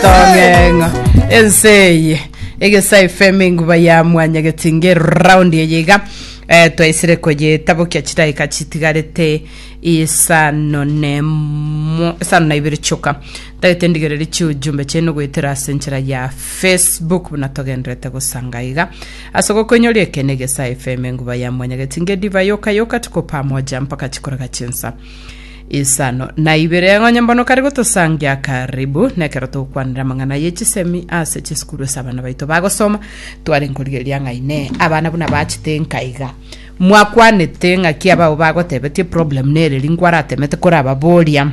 tong'eng'o ense eye egesa efm enguba ya mwanya getinge round eye iga eh, twaisire koyetabokia chidaika chitigarete isano nemo isano na ibere choka tagete ndigereri chiujumbe chene goetera ase enchera ya facebook buna togenderete gosanga iga ase gokoinyoria ekene egesa fm enguba ya mwanya getinge diva yoka yoka tuko pamoja mpaka chikoraga chinsa Isano na ibere ng'onye mbono kare gotosangia karibu nekero togokwanera amang'ana ye chisemi ase chisukuru ase abana baito bagosoma tware nkorigereria ng'aine abana buna bachete nkaiga mwakwanete ng'aki abao bagotebetie problem nereri nkwaraatemete korababoria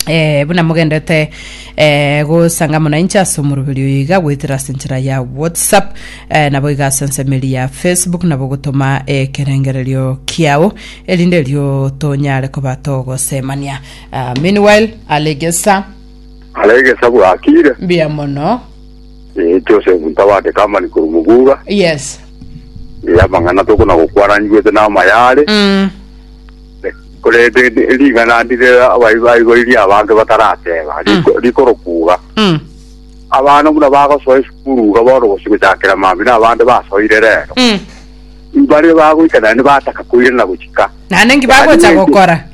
Eh, buna mogendete eh, gosanga muna inche ase omoroberi oyo iga goetera ase enchera ya whatsapp eh, nabo iga ase ensemeri ya facebook nabo gotoma ekerengererio kiao erinde erio tonyare koba togosemania Ah, meanwhile alegesa aregesa bwakire mbuya mono Eh, joseph ntabate kamani kuri muguga yes Eh, amang'ana tokona gokwaranigwete namayare mm. Korende ring'ana ndire abayi baiboirie abange batarateba, riko- rikorokuga. Mm. Abana buna bagosoa esukuru iga bono gose gochakera mambia na abande basoire rero. Mm. Mbare bagoika naende bataka koirana gochika. Naende nki bagocha gokora?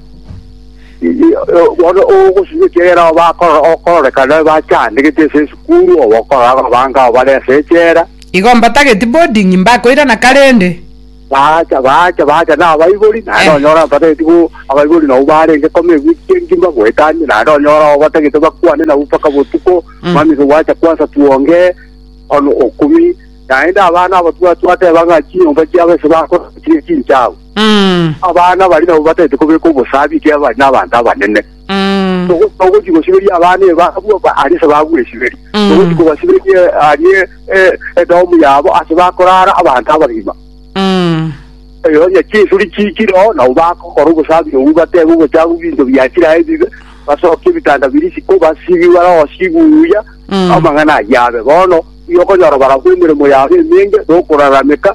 Bono ogosiba ekiagera abo bakoro- okororekana bachandegete ase esukuru, obokorora abange abo bare ase echela. Igo mbatageti boarding mbakoirana karende. Baacha, baacha, baacha nabaibori, naende Eh. onyora batageti bo abaibori nabo barenge kome egwe chienki mbagoetanie, naende onyora abo batagete bakwane nabo mpaka botuko, Mm. mami gwacha kwansa twonge ono okumi, naende abana abo twateba ng'a chinyomba chiabo ase bakora chire chinchagu. Mm. Abana bari nabo batagete kobeka obosabi ekero bari nabanto abanene. Mm. Togo- togochi gosiberia abana eba abwo ba- aria ase bagwesiberia Mm. togochi kobasiberia arie eh, edomu yabo ase bakorara abanto abagima Mm. eyo onye chinsuri chichiro nabo bakokora obosabi obu batebe obochafu binto biachire aye bibe basoke ebitanda biri siko basibi barao sibuya Mm. amang'ana ayabe bono igo okonyora barabwo emeremo yabo emenge nokorarameka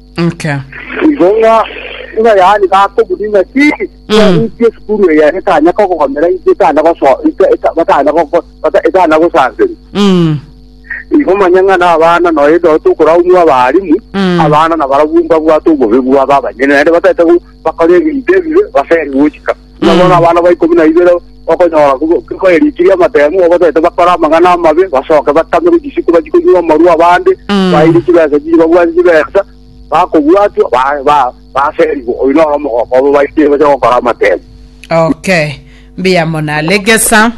Okay. Igo ng'a ng'a yaani bakobuni ng'a ki Mm. inki esukuru eye etanya kogomera inki etana goso ita- ita- batana gogo- bata- etana gosanseri Mm. igo manya ng'a nabana noe ndo tokoraumwa abarimu Mm. abana nabarabwo mbabwate obobe bwabo abanyene naende batete go- bakore ebinto ebibe baseri gochika Nabo ng'a abana ba ikomi na ibere okonyora koyerikirie amatemu, obatete bakore amang'ana amabe, basoke batamere chisiku bachie konywa amarwa abande, Mm. baeire chibesa chiria babwate chibesa, bakobwatwa ba- ba- baserigwe. Oyio noro omogoko obo baitiire bache gokora amatemu. okay mbuya mono alegesa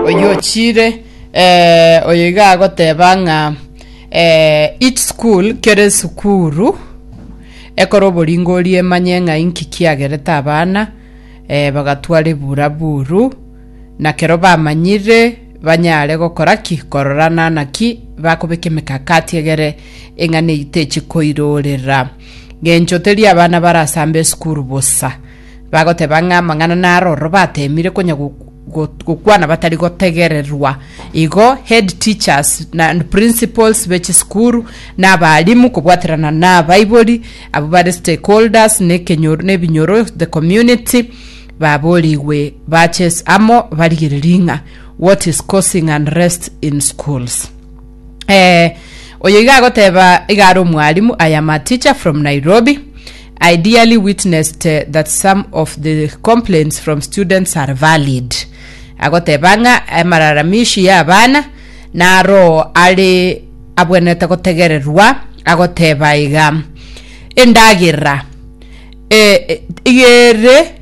oyo ochire eh, oyo iga agoteba ng'a eh, each school kere esukuru Ekora oboringoria emanye ng'a inki kiagerete abana ee bagatwara ebura buru, na kero bamanyire banyare gokora ki? Kororana naki bakobeka emekakati egere eng'ana eyio techi koirorera. Ng'encho teri abana barasambe esukuru bosa, bagoteba ng'a amang'ana naro ororo bateemire konya gokwana batari gotegererwa. Igo head teachers na and principals be chisukuru na abalimu kobwaterana na abaibori abwo bare stakeholders na ekenyoro na ebinyoro the community baborigwe bache amo barigererie ng'a what is causing unrest in schools. Eh oyo iga agoteba iga are omwalimu I am a teacher from Nairobi. I dearly witnessed that some of the complaints from students are valid. Agoteba ng'a amararamishi y'abana naroo are abwenete gotegererwa, agoteba iga, Endagera e- e- ere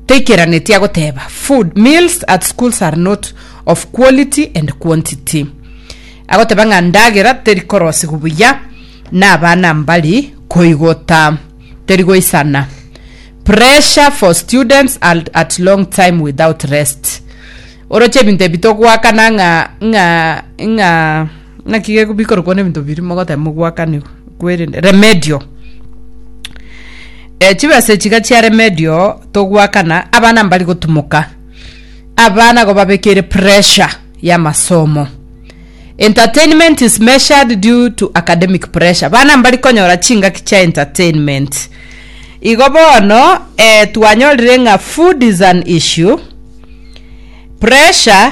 taikeranetie agoteba food meals at schools are not of quality and quantity agoteba ng'a ndagera teri korosigwa buya na abana mbari koigota teri goisana pressure for students and at long time without rest oroche ebinto ebi togoakana ng'a ng'a ng'a Naki ge- bikorokwa na ebinto biria mogoteba mogwakanigwa, kwerende remedio. Eh, chibesa echi iga chia remedio, togwakana, abana mbari gotumoka, abana igo babekeire pressure ya amasomo. Entertainment is measured due to academic pressure, bana mbari konyora chingaki chia entertainment. Igo bono, eh twanyorire ng'a food is an issue, pressure.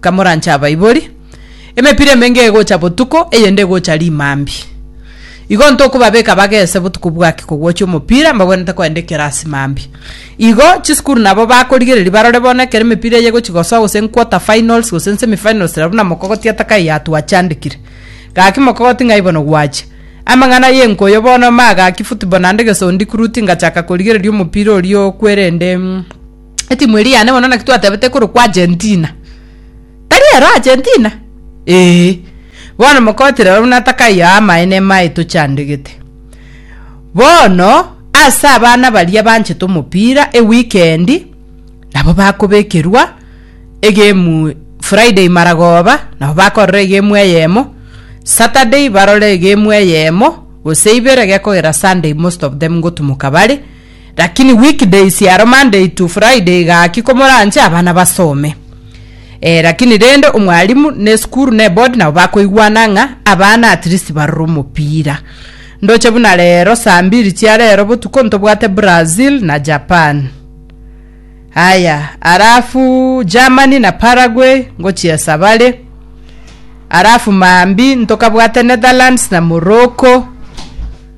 Kamoranche abaibori. Emepira emenge egocha botuko, eyende egocha rimambi. Igo ntokobabeka bagese botuko bwaki kogwochia omopira, mbagwenerete kogenda ekerasi mambi. Igo chisukuru nabo bakorigereria barore bono ekero emepira eye egochi gosoa gose nquarter finals gose nsemi finals rabu na mokogoti atakae yatwachandekire. Gaki mokogoti ng'ai bono gwachia. Amang'ana y'enkoyo bono magaki football naende gesondi kuruti ngachaka korigereria omopira oria okwerende etimu eria yane bono naki twatebete ekorokwa Argentina. Tari ero Argentina? Eeh. Bono mokotire oro buna takai aa amaene amaye tochandegete. Bono, ase abana baria banchete omopira e weekend, nabo bakobekerwa egame Friday maragoba, nabo bakorora egame eyemo, Saturday barore egame eyemo, gose ibere gekogera Sunday most of them ngotumoka bare. Lakini week days aro Monday to Friday gaki komoranche abana basome. Eh, lakini rende omwalimu ne esukuru ne board nabo bakoigwana ng'a abana at least barore omopira. Ndoche buna rero saa mbiri chia rero botuko ntobwate Brazil na Japan. Aya, alafu Germany na Paraguay ngochiesa bare. Alafu maambi ntokabwate Netherlands na Morocco.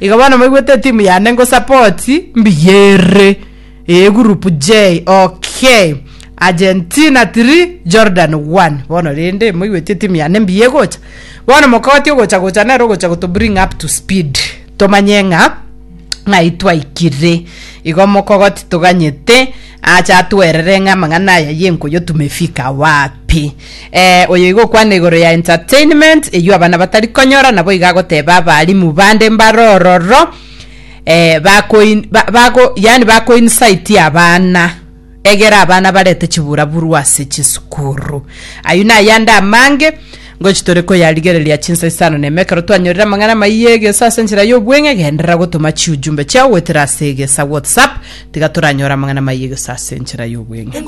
Iga bono moigwete etimu yane ngosapoti mbiyerire ee group J okay Argentina 3 Jordan 1 bono rende moigwete etimu yane mbiye gocha bono mokoti ogocha gocha nero ogocha goto bring up to speed tomanye ng'a ng'ai twaikire igo mokogoti toganyete acha atwerere ng'a amang'ana aya yenkoyo tumefika wapi Eh, oyo igokwana igoro ya entertainment eyio abana batari konyora nabo iga agoteba abalimu bande mbare ororo eh, bakoin, ba, bako, yani bakoinsite abana egera abana barete chiburaburu ase chisukuru ayio nayande amange ngochi tore koyarigereria chinsa isano na emekero twanyorire amang'ana amaiyo egesa ase enchera y'obweng'e genderera gotoma chiujumbe chiao goetera ase egesa whatsapp tiga toranyore amang'ana amaiyo egesa ase enchera y'obweng'e